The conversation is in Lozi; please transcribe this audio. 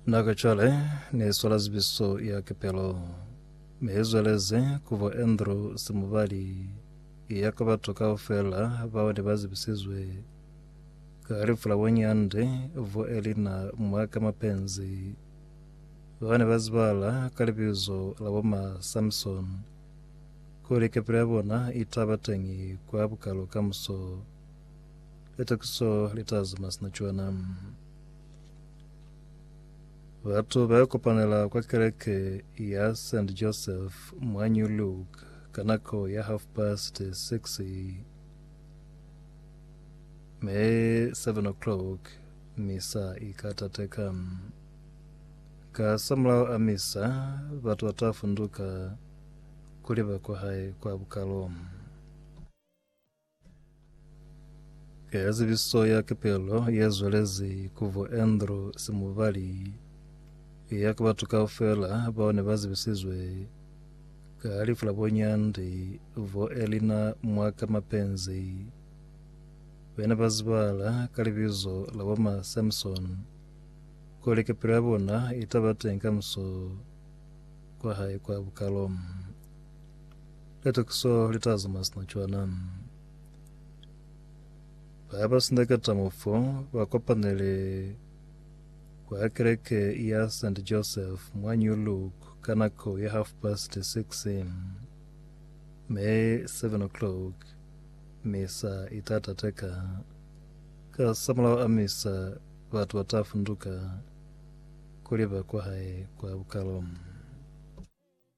Nako cwale ne swala zibiso ya kepelo me zweleze kubo Andrew Simubali ya ka batu kaufela bao ne ba zibisizwe ka halifu la bonyande bo Elina Mwaka Mapenzi ba ne ba zibala ka libizo la bo ma Samson kuli kepelo ya bona i taba teñi kwa bukalo kamuso. Litakiso litazi mwa sina cwana. Batu bayakopanela kwa keleke ya St. Joseph mwa New Look ka nako ya half past six me seven o'clock misa ikatateka. Ka samulaho a misa, batu batafunduka kuliba kwa hae kwa bukalo. Eya zibiso ya kepelo ye zwelezi ku bo Andrew Simubali eya ki batu kaufela bao ne ba zibisizwe ka lifu la bo Nyandi bo Elina Mwaka Mapenzi be ne ba zibahala ka libizo la bo Ma Samson kuli kepelo ya bona i ta ba teñi kamuso kwa hae kwa bukalo. Litakiso litazama sina cwana. Ba ba sindeketa mufo ba kopanele kwa kereke ya St. Joseph mwa New Look ka nako ya half past six me seven o'clock misa itatateka. Ka samulaho a misa batu batafunduka kuli ba kwa hae kwa bukalo.